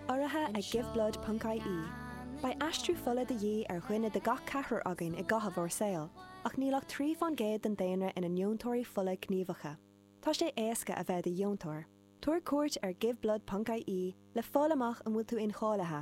Urraithe ag Giveblood ponc IE, beidh aistriú fola de dhíth ar dhuine de gach ceathrar againn i gcaitheamh ár saoil, ach níl ach trí fán gcéad den daonra ina ndeontóirí fola gníomhacha. Tá sé éasca a bheith i do dheontóir. Tabhair cuairt ar Giveblood ponc IE le fáil amach an bhfuil tú incháilithe.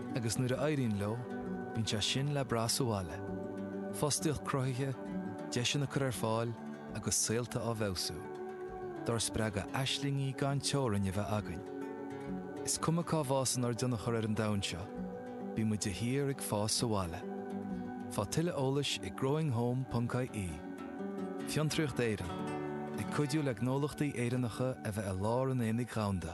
agus nuair a éiríonn leo, bíonn sé sin le brath sa bhaile, fostaíocht cruthaithe, deiseanna á gcur ar fáil agus saolta á bhfeabhsú, dár spreagadh aislingí gan teorainn a bheith againn. Is cuma cá bhfásann ár dtionchar ar an domhan seo, bíonn muid de shíor ag fás sa bhaile. Faigh tuilleadh eolais ag growinghome.ie Fiontraíocht Éireann, ag cuidiú le gnólachtaí Éireannacha a bheith i lár an aonaigh dhomhanda.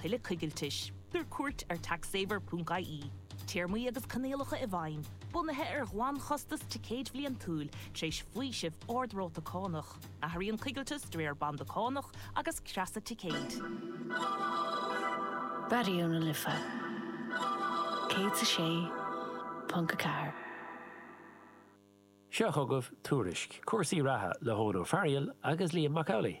Tuilleadh coigiltis. Tabhair cuairt ar taxsaver.ie. Téarmaí agus coinníollacha i bhfeidhm, bunaithe ar ghlanchostas ticéid bhliantúil, tar éis faoiseamh ard-ráta cánach. Athraíonn coigilteas de réir banda cánach agus creasa ticéid. Raidió na Life 106.4. Seo chugaibh tuairisc cúrsaí reatha le hEoghan Ó Fearghail agus Liam Mac Amhlaigh.